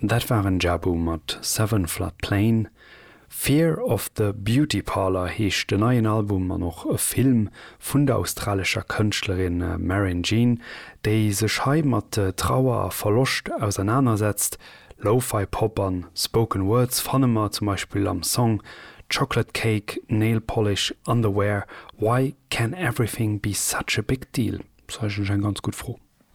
Dat waren Jabu mat Seven Flood Plain. Fear of the Beauty Parlour heescht den neien Album an och e Film vun der australescher Kënschtlerin Marin Jean, déi sech hei mat Trauer a Verloscht ausernanersetzt. Lo-Fi Pop an Spoken Words fanne mer zum Beispill am Song Chocolate Cake, Nail Polish, Underwear, Why Can Everything Be Such a Big Deal? Ass eigentlech eng ganz gutt Fro.